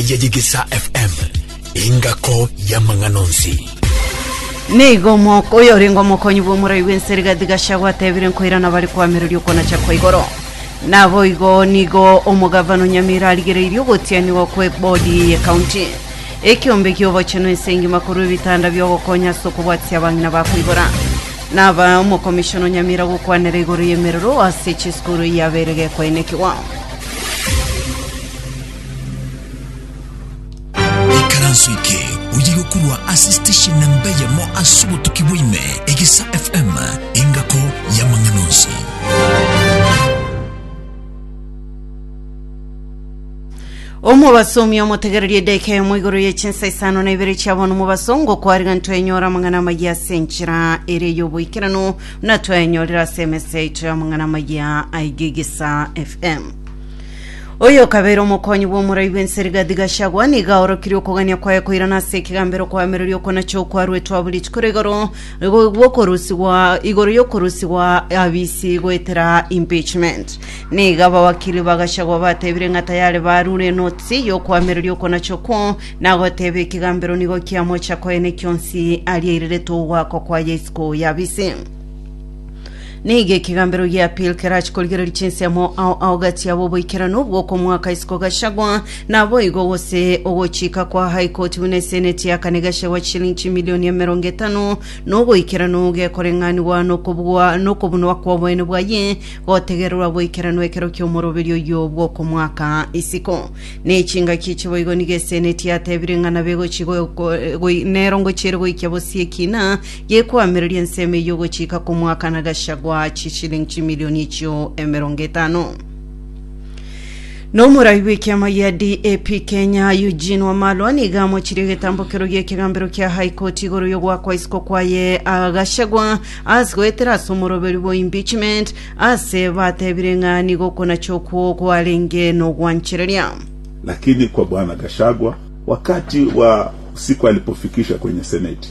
Yegigisa FM, engako y'amang'ana onsi. Nigo omoko oyo orenge omokonyi bw'omorai bw'ense rigati Gachagua atebire nkoirana bare koamereria okonacha kwa igoro. Naboigo nigo omogavana Onyamira arigereirie ogotianigwa kwe bodi ye county. Ekiombe ki'obochenu ense engima korwa ebitanda biogokonya ase okobwatisia abang'ina ba koibora. Naba omokomishona Onyamira gokwanera igoro y'emerero ase chisukuru eyabeire gekoenekigwa. Ikaranso eke oye gokorwa ase station namba eyemo ase obotuki bwaime egesa fm engako y'amang'ana onsi omobasomi omotegererie edeka emo igoro ye chinsa isano na ibere chia bono mobasongo kwariga ntwenyora amang'ana amaya ase enchera ere y'oboikeranu na twaenyorera ase emesa yaito y'amang'ana amaya aigegesa fm Oyokabeire omokonyi bw'omorai bw'ense Rigathi Gachagua nigo aorokirie okogania kwaye koirana ase ekegambero kwaemeroria okonacha okwaruetwe abo rituko ria igoro gwokorusigwa igoro y'okorusigwa abisi goetera impeachment. Nigo abawakili ba Gachagua batebire ng'a tayari barure enotisi y'okwameroria okonacha okwo na goteba ekegambero nigo kiamocha koyene kionsi aria aireretwe ogoakwa kwaye isiko y'abisi. Nigo ekegambero gia Pil kerache korigereria chinsemo ao ao gati yabo oboikeranu bw'okomoaka isiko Gachagua, naboigo gose ogochika kwa High Court buna eseneti ya kane Gachagua chishilingi chimilioni emerongo etano na oboikeranu gekoreng'anigwa nokobugwa nokobunwa kw'oboene bwaye gotegererwa boikeranu ekero ki'omoroberio oyio bw'okomoaka isiko. Ne chingaki echi boigo nigo eseneti yatebire ng'a nabegochi go- go- goi- nero ngochiere goikia bosie ekina gekoamereria ensemo eyio gochika komwaka na Gachagua chishilingi chimilioni echio emerongo etano. Na omoraai bw'ekiama gia DAP Kenya Eugene Wamalwa niga amochirie egetambokero gi'ekegambero kia High Court igoro y'ogoakwa isiko kwaye ah, Gachagua ase goetera ase omoroberi bwa impeachment ase batebire ng'a nigo okonacha okwo kwarenge nogwanchereria. Lakini kwa Bwana Gachagua, wakati wa siku alipofikisha kwenye seneti,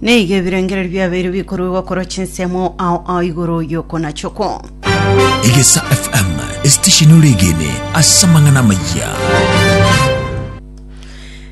Nigo ebirengererio biabeire bikoruegwa korwa chinsemo ao ao igoro y'okonachokwa. Egesa FM, esitesheni ore egene ase amang'ana amayia.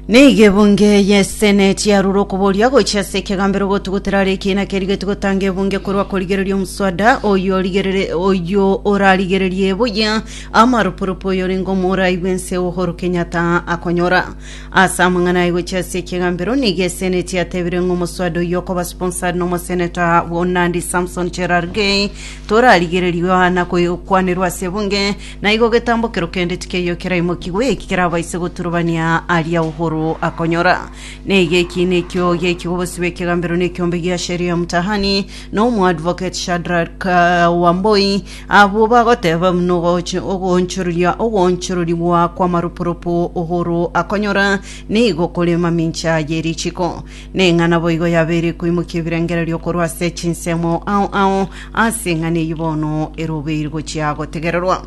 Nigo ebunge y'eseneti yarure okoboria gochia ase ekegambero gotugutera are ekiina kerigetie gotanga ebunge korwa korigereria omuswada oyo origerere- oyo orarigererie buya amarupurupu oyo orenge omorai bw'ense Uhuru Kenyatta akonyora Ase amang'ana aye gochia ase ekegambero nigo eseneti yatebire ng'a omoswada oyio okoba sponsored nomoseneta bwa Nandi Samson Cherargei torarigererigwe Yohana koyokwanerwa ase ebunge na igo getambokero kende tikeiyo keraimokigwe eki kerabaise goturubania aria Uhuru akonyora neiga eki nekio geki obosi bw'ekegambero nekiombe gia Sheria Mtahani na omoadvocate Shadrack uh, Wamboi Abwo bagoteeba buna ogocha ogoonchoreria ogoonchororigwa kw'amaropo-ropo Uhuru akonyora, nigo kore mamincha ye richiiko. Ning'a naboigo yabeire koimokia ebirengererio korwa ase chinsemo ao ao ase eng'ana eyio bono ere obeire gochia gotegererwa.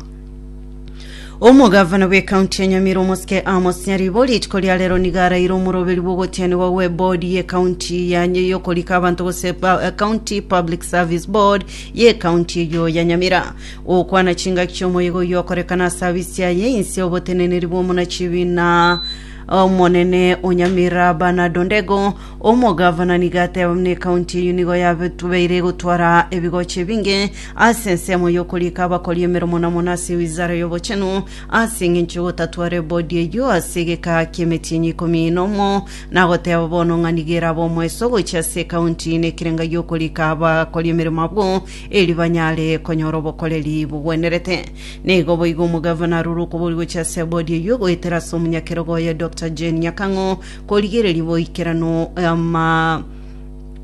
Omogavana bw'ecounty ya Nyamira omosike Amos Nyaribo rituko ria rero niga araire omoroberi bw'ogotianigwa gwe board ye county ya yokorika abanto gose pa- eh, county public service board ye county eyo ya Nyamira okwana chingaki chiomoyega oyio okorekana ase abisi aye inse oboteneneri bw'omonachibi na omonene onyamira Bernard Ondego omogavana niga ateba buna ecounty eyo nigo yabetubeire gotwara ebigoche binge Ase ensemo y'okorika abakori emeromo na mono ase Wizara y'Obochenu, ase engencho y'ogotatwara ebodi eyio ase egekaa ki'emetienyi ikomi nomo, nagoteeba bono ng'a nigo erabe omoeso gochia ase ekaunti na ekerenga gi'okorika abakori emeremo abwo, eri banyare konyora obokoreri bogwenerete. Nigo boigo omogavana arure okobori gochia ase ebodi eyio goetera ase omonyakerogo oye Doctor Jane Nyakang'o korigereria boikeranu ama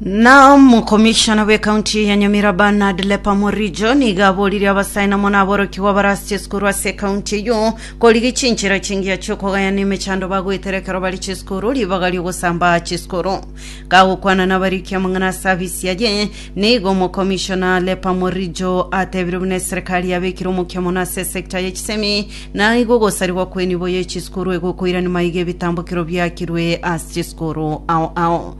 Na omokomishona bw'ekaunti ya Nyamira Bernard Lepa Morijo nigo aboririe abasae namo naborokigwa barasiche esukuru ase ekaunti eyio korigia chinchera chingiya chi'okogaya na emechando bagoetera ekero bari chisukuru ribaga ri'ogosamba chisukuru. Kagokwana nabariki amang'ana ase abisi aye, nigo omokomishona Lepa Morijo atebire buna eserekari yabekire omokia mono ase esekta ye chisemi na igo ogosarigwa kw'enibo ye chisukuru egokoirani maiga ebitambokero biakirwe ase chisukuru ao ao.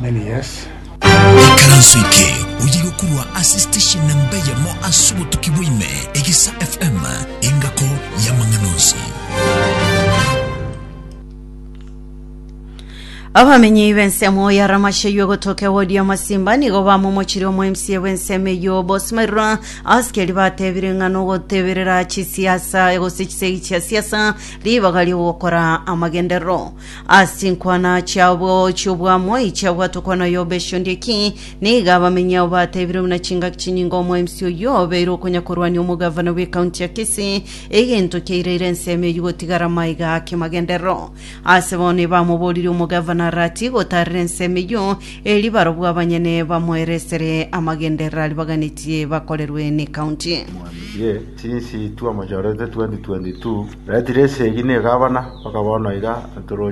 many years. Ekaranso eke oye gokorwa ase station namba eyemo ase obotuki bwa ime, Egisa FM, engako y'amang'ana onsi. Abamenyi b'ensemo ya Ramashayo egotoka ewodi ya Masimba nigo bamomochire omo MCA bw'ensemo eyio Boss Mairwa asikeri batebire ng'a nogoteberera chisiasa gose chisegi chia siasa ribaga rigokora amagenderero Ase chinkwana chiao bwao chi'obwamoi chiagwa tokwana oyo obe eshondia ki, nigo abamenyi ao bateebire buna chingaki chinyinga omwaimsi oyio obeire okonyakorwania omogavana bw'ekaunti ya Kisii, egento kiaireire ensemo eyio gotigara maiga ake magenderero. Ase bono ebamoboririe omogavana aratie gotaarera ensemo eyio, erio barabwo abanyene bamoeresere amagenderero aria baganetie bakorerwe n'ekaunti. Mwambie Since 2022 twamochorete, retire esegi na egavana, mpaka bono iga toroche.